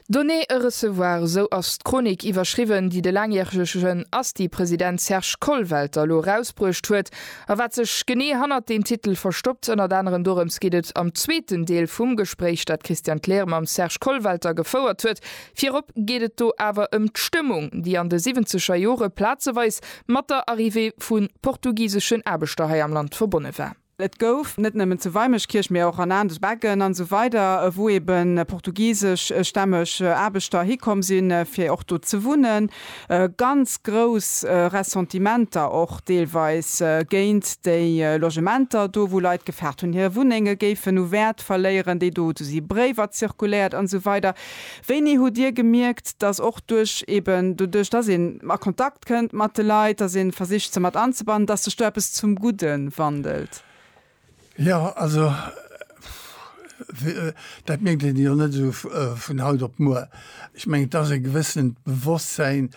Donner et recevoir, esou ass d'Chronik iwwerschriwwen, déi de laangjäregen Asti-President Serge Kollwelter elo erausbruecht huet. A wat sech genee hannert deem Titel verstoppt, ënnert anerem dorëms geet et am zweeten Deel vum Gespréich, dat d'Christiane Kleer mam Serge Kollwelter gefouert huet. Virop geet et do awer ëm d'Stëmmung, déi an de siwwenzeger Jore plazeweis mat der Arrivée vu portugiseschen Aarbechter hei am Land verbonne war. Et gouf net nëmmen zu Weimeschkierch, mee och an aner Becken an esou weider, wou ebe portugiseschstämmeg Aarbechter hikomm sinn, fir och do ze wunnen, ganz grouss Ressentimenter och deelweis géint déi Logementer do, wou Leit gefaart hunn, hir Wunnenge géifen u Wäert verléieren, déi do do si Bréiwer zirkuléiert an esou weider. Wéini hutt Dir gemierkt, dass och duerch eben doduerch, dass een a Kontakt. Kënnt mat de Leit, dass een versicht se mat anzebannen, dass sech do eppes zum Gudden wandelt. Jo, also dat méngt een jo net esou vun haut op muer. Ech mengen et ass e gewëssent Bewosstsein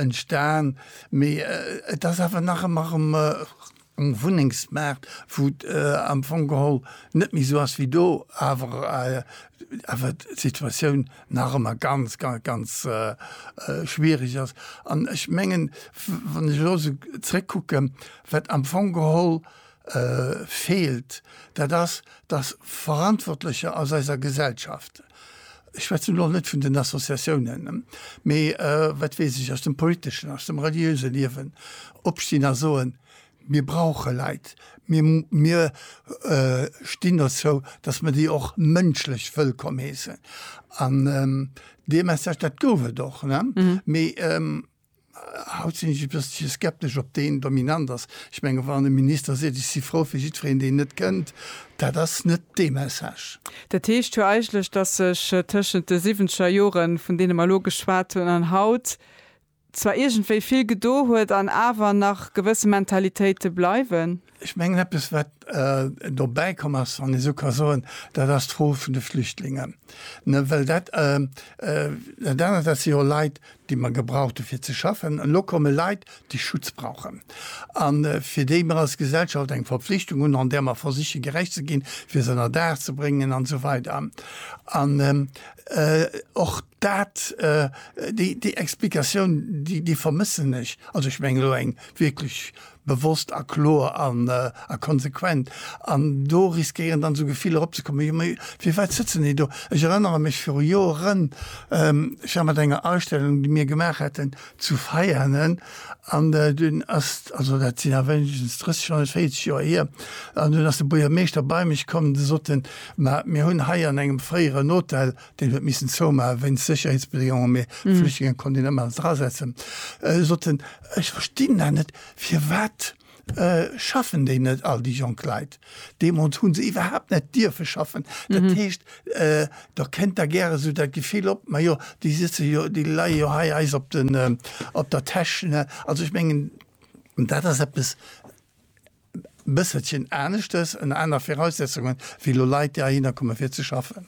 entstan, mee et ass awer nach ëmmer erëm um Wunnengsmaart, wou et am Fong geholl net méi esou ass wéi do, awer awer d'Situatioun nach ëmmer ganz, ganz schwierig ass. An ech mengen, wann ech elo esou zrëckkucken, wat am Fong geholl feelt, dat ass, dass Verantwortlecher aus eiser Gesellschaft Ech schwätzen elo net vun den Associatiounen, mee wat weess ech, aus dem politeschen, aus dem reliöse Liewen opstinn a soen, Mir brauche Leit, mir mir stinn dozou, datt mer déi och mënschlech wëllkomm heessen. An dee Message, dat gouf et och, ne? Mee. Haut sinn ech e bëssche skeptesch, ob deen dominant ass. Ech menge wann e Minister seet, ech si frou fir jiddwereen, deen net kënnt, dat ass net dee Message. Dat heescht jo eigentlech, datt sech tëschent de siwwenzeger Joren, vun deene mer elo geschwat hunn, an haut zwar iergendwéi vill gedo huet an awer nach gewësse Mentalitéite bleiwen. Ech mengen, eppes, wat dobäi komm ass, wann ee sou ka soen, dat ass d'Fro vun de Flüchtlingen. Well dat anert, dat si jo Leit, déi mer gebraucht hu fir ze schaffen. Elo komme Leit, déi Schutz brauchen a fir déi mer als Gesellschaft eng Verpflichtung hunn, an där mer versiche gerecht ze ginn, fir se ënnerdaach ze bréngen an esou weider an och. Dat, déi Explikatioun, déi vermëssen ech. Also ech mengen elo eng wierklech bewosst a kloer an a konsequent. An do riskéieren dann esou Gefiller opzekommen, jo mee firwat sëtzen déi do? Ech erënnere mech viru Joren, ech war mat enger Ausstellung, déi mir gemaach haten zu Veianen an dunn ass, also dat sinn awer wéinstens 30 wann net 40 Joer hier, an dunn ass de Buergermeeschter bei mech komm, de sot en, ma mir hunn hei an engem fréieren Hotel deen huet missen zoumaachen wéinst Sécherheetsbedéngungen, mee d'Flüchtlinge konnt een ëmmer alles drasetzen, sot en, ech verstinn dat net, firwat schaffen déi net, all déi jonk Leit? Deemools hu se iwwerhaapt net dierfe schaffen. Dat heescht, da kënnt da gäre esou dat Gefill op, majo, déi sëtze jo, déi leie jo hei eis op der Täsch, ne? Also ech mengen, dat ass eppes, Bësselchen aneschters, ënner aner Viraussetzungen, wéi elo Leit, déi heihinner kommen, fir ze schaffen.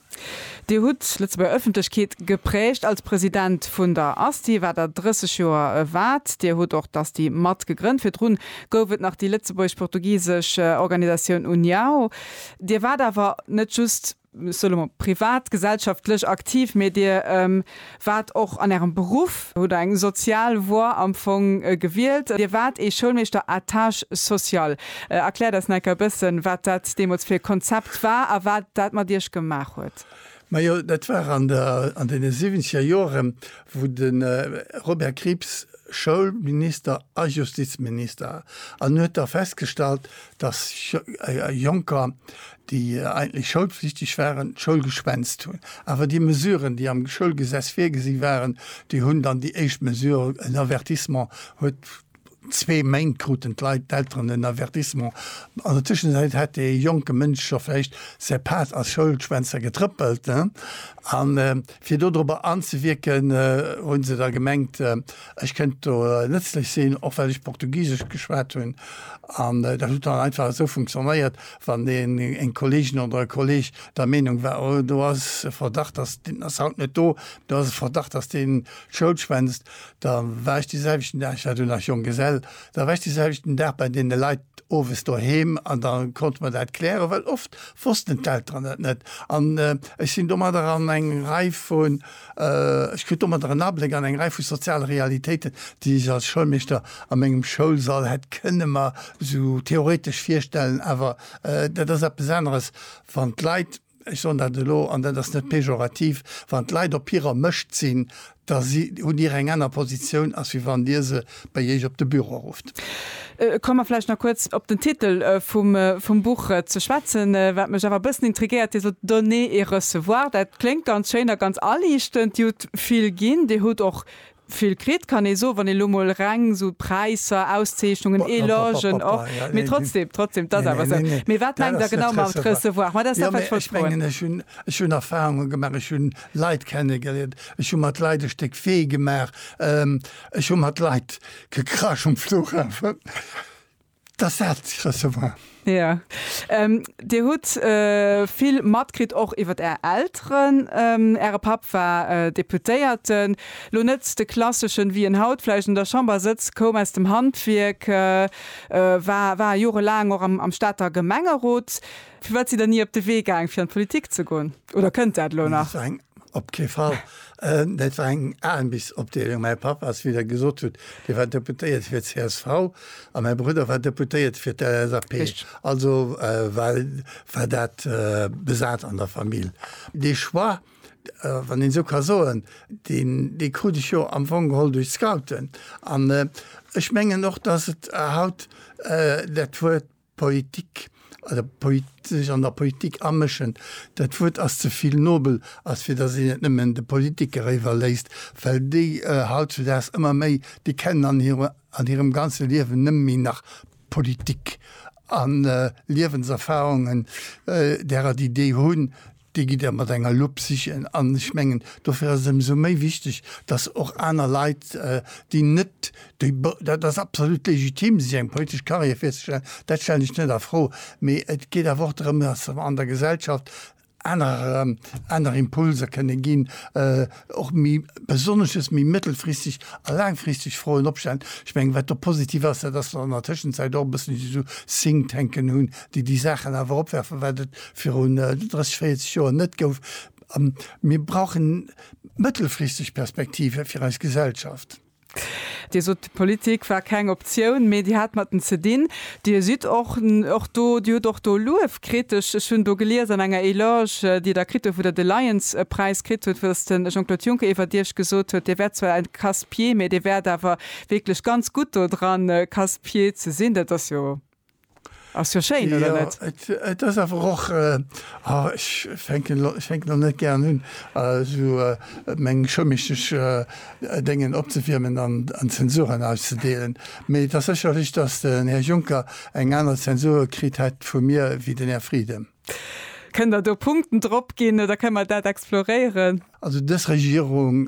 Dir hutt d'Lëtzebuerger Ëffentlechkeet geprägt als President vun der ASTI, wat Der 30 Joer waart. Dir hutt och d'ASTI mat gegrënnt. Virdru gouf et nach déi lëtzebuergesch-portugisesch Organisatioun Uniao. Dir waart awer net just. ech soe lo mol privat, gesellschaftlech aktiv, mee Dir waart och an Ärem Beruff, hutt eng sozial Voie am Fong gewielt, Dir waart ee Schoulmeeschter à tâche sociale. Erkläert eis necker e bëssen, wat dat deemools fir e Konzept war a wat dat mat Iech gemaach huet. Majo, dat war an deene siwwenzeger Jore wou de Robert Krieps Schoulminister a Justizminister an huet da festgestallt, datt Jonker déi eigentlech schoulflichteg waren, d'Schoul geschwänzt hunn. Awer déi Mesuren, déi am Schoulgesetz virgesi waren, déi hunn dann déi éischt Mesure, en Avertissement huet zwee Méint kruten d'Leit, d'Elteren en Avertissement. An der Tëschenzäit hat dee jonke Mënsch scho vläicht säi Pad als Schoulschwänzer getrëppelt. A fir do dorobber anzewierken, hu se da gemengt, ech kënnt do nëtzlech sinn, och well ech Portugisesch geschwat hunn. An dat huet dann einfach esou funktionéiert. wann een, eng Kolleegin oder e Kolleeg der Meenung war, oh do ass e Verdacht, dass, deen ass haut net do, do ass e Verdacht, dass deen d'Schoul schwänzt, da war ech deeselwechten Dag, ech war du nach Jonggesell, da war ech deeselwechten Dag bei deene Leit owes doheem an da konnte mer dat klären, well oft wossten d'Elteren dat net. An ech sinn domadder an eng Rei vu Ech krut domadder en Abléck an eng Rei vu soziale Realitéiten, déi ech als Schoulmeeschter a mengem Schoulsall hätt kënne mer esou theoretesch virstellen. Awer dat ass eppes aneres, wann d'Leit, ech soen dat elo an dat ass net pejorativ, wann d'Leit op hirer Mëscht sinn, da hunn Dir eng aner Positioun, als wéi wann Dir se bei Iech op de Büro rufft. Komme mer vläicht nach kuerz op den Titel vum Buch ze schwätzen. Wat mech awer e bëssen intriguéiert, Dir sot donner et recevoir. Dat kléngt ganz schéin a ganz aliichtend. Dir hutt vill ginn, Dir hutt och vill kritt, kann ee soen, wann ee elo mol reng esou Präisser, Auszeechnungen, Elogen och. Mee trotzdeem, trotzdeem, et ass awer esou. Mee wat mengt Der genau mat recevoir? Ma dat ass dat, wat ech wollt froen. Ech hunn, ech hunn Erfahrunge gemaach, ech hunn Leit kennegeliert, ech hu mat Leit e Stéck Wee gemaach. Ech hu mat Leit gekrasch um Flughafen, dass dat gerësse war. Jo. Dir hutt vill matkritt och iwwer Är Elteren. Äre Papp war Deputéierten, elo net de klasseschen, wéi en haut vläicht un der Chamber sëtzt, koum aus dem Handwierk, war war jorelaang och am Stater Gemengerot. Firwat sidd Der ni op de Wee gaang, fir an d'Politik ze goen? Oder kënnt dat elo nach? Op kee Fall. Dat war eng Aarmbeefsopdeelung. Mäi Papp ass, wéi Der gesot hutt, dee war Deputéierte fir csv a mäi Brudder war Deputéierte fir d'LSAP. Also war dat besat an der Famill. Dee Choix, wann een esou ka soen, dee krut ech jo am Fong geholl duerch d'Scouten. An ech mengen och, datt et haut dat Wuert Politik oder sech an der Politik amëschen, dat Wuert ass ze vill nobel, als fir datt een et nëmmen de Politikere iwwerléisst, well déi hautzudaags ëmmer méi, déi kennen an hirem ganze Liewen nëmme méi nach Politik. A Liewenserfarungen, därer déi déi hunn, Déi gitt Der mat enger Lupp sichen. An ech mengen, dofir ass et ëmsou méi wichteg, datt och aner Leit, déi net déi, dat ass absolut legitim, sech eng politesch Carrière virzestellen, dat stellen ech net a Fro, mee et geet awer och drëm, datt se an der Gesellschaft anerer, aner Impulser kënne ginn. och méi besonnesches, méi mëttelfristeg a laangfristeg Froen opstellen. Ech mengen, wat do positiv ass, dat ass, datt mer an der Tëschenzäit och e bëssen esou Think-Tanken hunn, déi déi Saachen awer opwerfen, wat et virun 30, 40 Joer net gouf. Mir brauchen mëttelfristeg Perspektive fir eis Gesellschaft. Dir sot, d'Politik war keng Optioun, mee Dir hat mat den ze dinn. Dir sidd och och do, Dir hutt och do Luef kritt. Ech ech hunn do gelies an enger Eloge, déi Der kritt hutt, wou Der de Lions-Präis kritt hutt, wou dass de Jean-Claude Juncker iwwert Iech gesot huet, Dir wäert zwar en casse-pied, mee Dir wäert awer wierklech ganz gutt do dran, casse-pied ze sinn. Dat ass jo Ass jo schéin, oder net? Jo, et ass awer och, oh, ech fänken elo net gären un, esou meng choumistesch Déngen opzewiermen an Zensuren auszedeelen, mee et ass sécherlech, datt den Här Juncker eng aner Zensur kritt hätt vu mir wéi den Här Frieden. Kënnt Der do Punkten drop ginn, da kënne mer dat exploréieren. Also dës Regierung,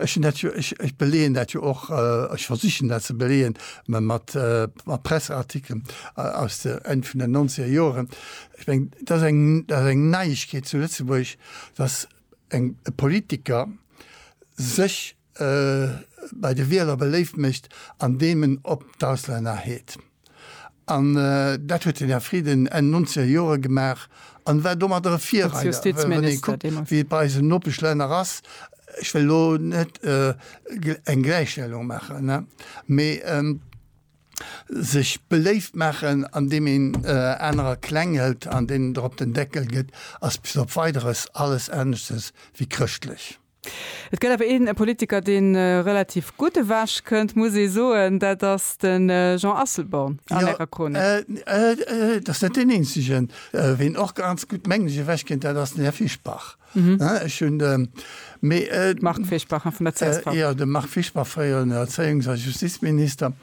ech hunn dat jo, ech beleeën dat jo och, ech versichen dat ze beleeën mat Presseartikelen aus de Enn vun den Nonzeger Joren. Ech meng, et ass eng, et ass eng Neiegkeet zu Lëtzebuerg, datt e Politiker sech bei de Wieler beléift mécht an deem en op d'Auslänner heet. An dat huet den Här Frieden Enn nonzeger Jore gemaach an war domadder e Virreider, well wann ee kuckt, wéi et bei eisen Nopeschlänner ass, ech wëll elo net eng Gläichstellung maachen, mee sech beléift maachen an deem een anerer kleng hëlt an deenen der op den Deckel gëtt, ass bis op Weideres alles aneschters wéi chrëschtlech. Et gëtt awer een Politiker, dee relativ gutt ewech kënnt, muss ee soen, dat ass de Jean Asselborn an Ärer Chronik. Jo, et ass net deen eenzegen. Ween och ganz gutt, mengen ech, ewech kënnt, dat ass den Här Fischbach. Ech hunn de. Marc Fischbach, vun der csv. Jo, de Marc Fischbach, fréieren Erzéiungs a Justizminister.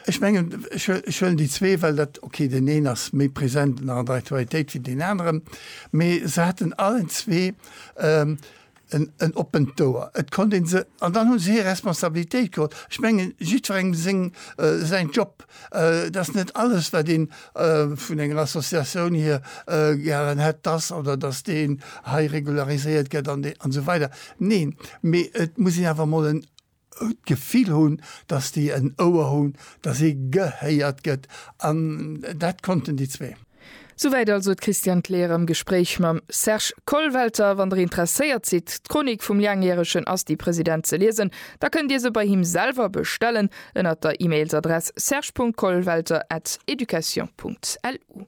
Ech mengen, ech huelen déi zwee, well dat, okay, deen een ass méi present an der Aktualitéit wéi deen aneren, mee se haten allen zwee en oppent Ouer, et konnt ee se, an dann hu se hir Responsabilitéit geholl. Ech mengen, jiddwerengem seng, säin Job, et ass net alles, wat een vun enger Associatioun hier gären hätt, dass oder dass deen hei regulariséiert gëtt an esou weider. Neen, mee et muss een awer emol en, d'Gefill hunn, dass déi en Ouer hunn, dass ee gehéiert gëtt an dat konnten déi zwee. Souwäit also d'Christiane Kleer am Gespréich mam Serge Kollwelter. Wann der interesséiert sidd, d'Chronik vum Laangjäregen ass déi President ze liesen, da kënnt dir se bei him selwer bestellen ënnert der Emailsadress serge.kollwelter@education.lu.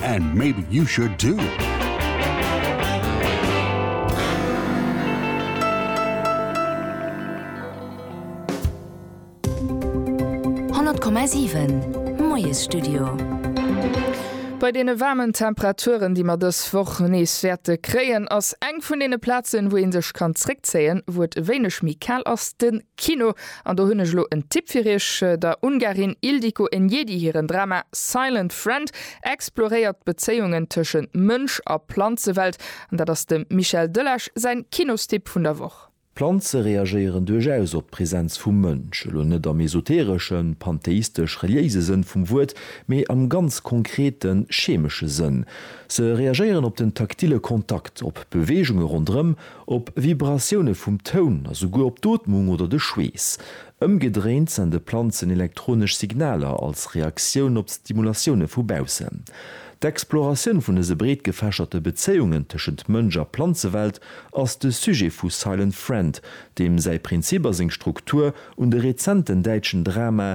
And maybe you should too! Bei deene waarmen Temperaturen, déi mer dës Woch nees wäerte kréien, ass eng vun deene Plazen, wou ee sech kann zréckzéien, wou et e wéineg méi kal ass, de. Kino, an do hunn ech elo en Tipp fir Iech, Der Ungarin Ildiko Enyedi hiren Drama Silent Friend exploréiert d'Bezéiungen tëschent Mënsch a Planzewelt, an dat ass dem Michel Delage säin Kinostipp vun der Woch. Planze reagéieren duerchaus op d'Präsenz vum Mënsch, elo net am esotereschen, pantheistesch-reliéise Sënn vum Wuert, mee am ganz konkreten, chemesche Sënn. Se reagéieren op den taktille Kontakt, op Beweegunge ronderëm, Op Vibratioune vum Toun a souguer op d'Ootmung oder de Schweess. Ëmgedréint sende Planzen elektronesch Signaler als Reaktioun op d'Stimulatioune vu baussen. D'Exploratioun vun dëse breetgefächerte Bezéiungen tëschent Mënsch a Planzewelt ass de Sujet vu Silent Friend, deem säi Prinzip a seng Struktur un de rezenten däitschen Dramae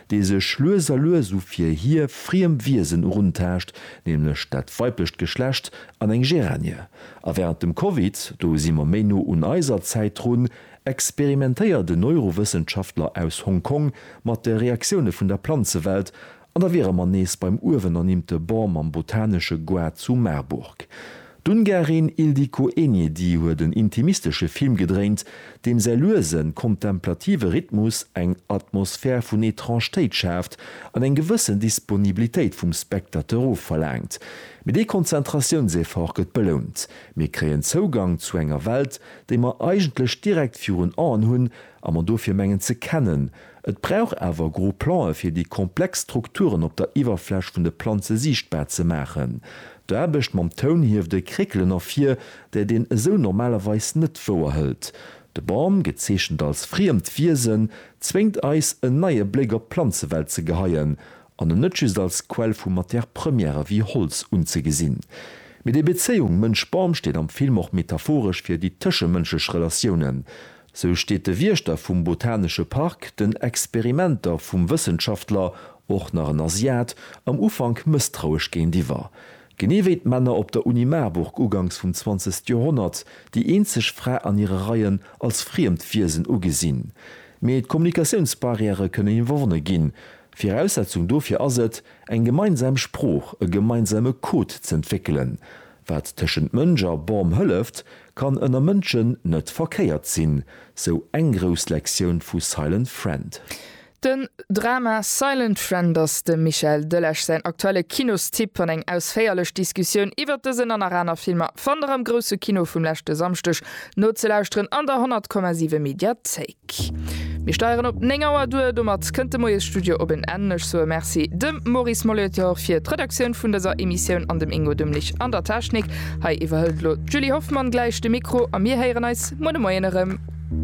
dee sech lues a lues u fir hie friem Wiesen eruntaascht, nämlech dat weiblecht Geschlecht an eng Geranie. A wärend dem Covid, do si mer méi no un eiser Zäit drun, experimentéiert en Neurowëssenschaftler aus Hong Kong mat de Reaktioune vun der Planzewelt, an da wiere mer nees beim uewenernimmte Bon mam Botanesche Goart zu Marburg. D'Ungarin Ildikó Enyedi huet en intimistesche Film gedréint, deem säi luesen, kontemplative Rhythmus eng Atmosphär vun Etrangtéit schaaft an eng gewëssen Disponibilitéit vum Spectateur ofverlaangt. Mee dee Konzentratiounseffort gëtt belount, mir kréien Zougang zu enger Welt, déi mer eigentlech direkt virun Aen hunn a mer dofir mengen ze kennen, Et brauch awer gro Plan'e fir déi komplex Strukturen op der Iwwerfläch vun de Planze siichtbar ze maachen. D'Aarbecht mam Toun hieft e Kréckelen ervir, dat een esou normalerweis net wouerhëlt. De Bam, gezeechent als friemt Wiesen, zwéngt eis en neie Bléck op d'Planzewelt ze geheien an en net just als Quell vu Matière Première wéi Holz unzegesinn. Mee déi Bezéiung Mënsch-Bam steet am Film och metaphoresch fir déi tëschemënschlech Relatiounen. Sou steet de Wiechter vum Botanesche Park den Experimenter vum Wëssenschaftler, och nach en Asiat, am Ufank mësstrauesch géintiwwer. Genee wéi d'Männer op der Uni Marburg ugangs vum zwanzegste Joerhonnert, déi eenzeg Fra an hire Reien als friemt Wiesen ugesinn. Mee d'Kommunikatiounsbarrièrë kënnen iwwerwonne ginn. Viraussetzung dofir ass et, eng gemeinsam Sprooch, e gemeinsame Code z'entwéckelen. Wat tëschent Mënsch a Bom hëlleft, kann ënner Mënschen net verkéiert sinn, sou eng grouss Lektioun vu Silent Friend. Den Drama Silent Friend ass dem Michael Delage säin aktuelle Kinostipp an eng ausféierlech Diskussioun iwwert dësen an nach aner Filmer fannt der am Grousse Kino vum leschte Samschdeg nozelauschteren an der 100,7 Mediathéik. Mir steieren op 9 Auer duer. Domat kënnt de Moiesstudio op en Enn. Ech soe Merci dem Maurice Molitor fir d'Redaktioun vun dëser Emissioun an dem Ingo Demlich an der Technik. Hei iwwerhëlt elo d'Julie Hoffmann gläich de Mikro a mir héieren eis muer de Moien erëm.